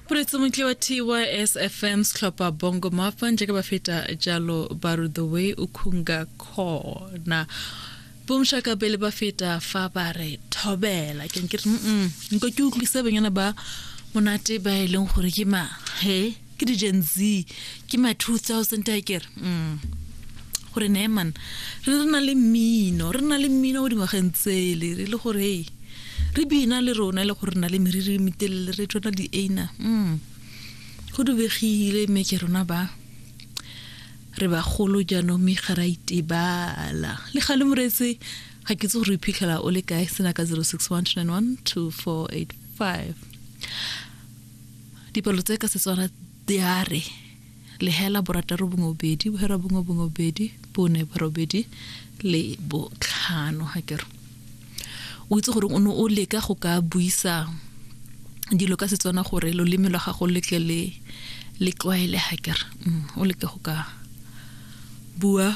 Puretso montle wa TYS FM Sklopper Bongo Mafa njeke ba feta jalo Baru the way ukhunga khona bomshaka bele ba feta fa ba re thobela ke nkere mm nko ke utlwise banyana ba monate ba e leng gore ke ma he ke di-gen z ke ma 2000 a kere mm. gore neman re re na le mmino re na le mmino o dingwageng tsele re le gore hey re bina le rona e le gore re na le meriri e metelele re tsona di-ana mm. go dubegile mme ke rona ba re bagolo jaanong mme ga ra itebala le ga le moretse ga ke tse gore iphitlhela o le kae sena ka 061 291 2485 Dipalo tse ka Setswana di a re lehela borataro bongwe bobedi bohera bongwe bongwe bobedi bone borobedi le botlhano ga kero o itse gore o ne o leka go ka buisa dilo ka Setswana gore loleme lwa gago le tle le le tlwaele ga kere mm, o leke go ka bua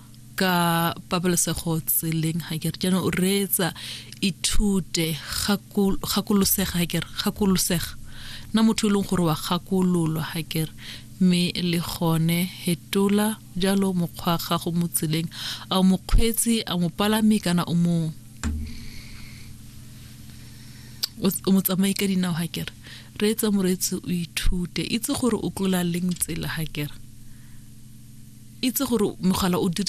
ka pabalesego tseleng ga kere jaanong o reetsa ithute gakolosega ga kere gakolosega na motho e leng gore wa gakololwa ga kere mme le gone hetola jalo mokgwa gago mo tseleng a o mokgweetsi a mopalami kana o mo o mo tsamaye ka dinao ga kere Reetsa moreetsi o ithute. Itse gore o tlola leng tsela ga kere. Itse gore mogala o dirisiwa